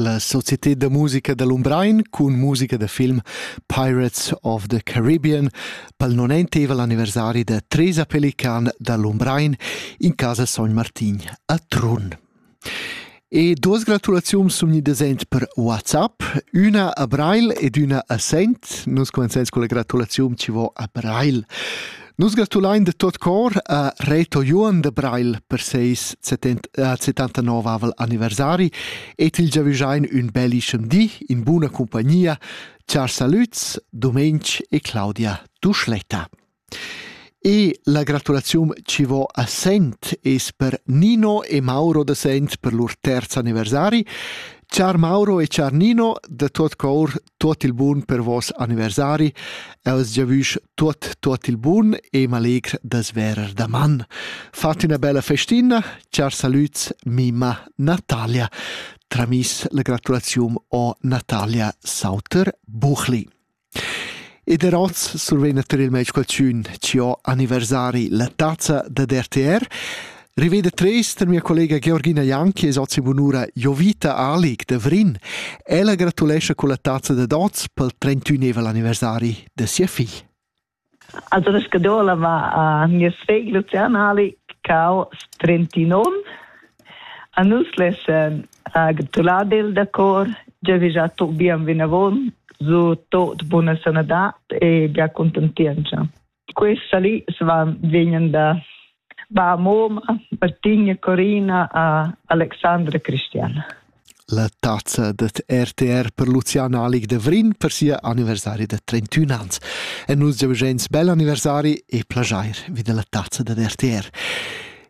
La società da musica da Lumbrein cun musica da film Pirates of the Caribbean pel non enteva l'anniversari da Tresa Pelican da Lumbrein in casa Sogn Martin a Trun. E duas gratulaziuns sun gnidas ent per WhatsApp, üna a Brail ed üna a Sent. Nus comenzains con la gratulaziun chi vo a Brail. Nus gratulain de tot cor a Reto Johan de Breil per seis 79 anniversari et il giavüschain ün bellischem di in buna compagnia, char salüts Domenc e Claudia Duschletta. E la gratulazium ci vo a Sent es per Nino e Mauro de Sent per lur terz anniversari. Char Mauro e char Nino, de tot cor tuot il bun per vos anniversari, els giavüsch tuot tuot il bun e m'allegr das verer daman. Fat üna bella festina, char salüts mima Natalia. Tramis la gratulazium o Natalia Sauter Buchli. Ed er oz survegna tar il meis qualchün ci ho anniversari la tazza da RTR. Riveda trist mia collega Georgina Jan che es ozi bunura Jovita Alig de Vrin. Ella gratulescha culla tazza de dots pel 31 anniversari de sia figl. Also das Gadola war a Niesweg Lucian Alig cau 39 a nus lessen a gratulade da cor già già to bien vinavon zu tot buona sanadat e bia contentienza. questa lì svan vegnan da va a Moma, Martina, Corina a Alexandra Cristiana. La tazza dat RTR per Luciana Alig de Vrin per sia anniversari de 31 ans. E nus giavigents bel anniversari e plagiair vid la tazza da RTR.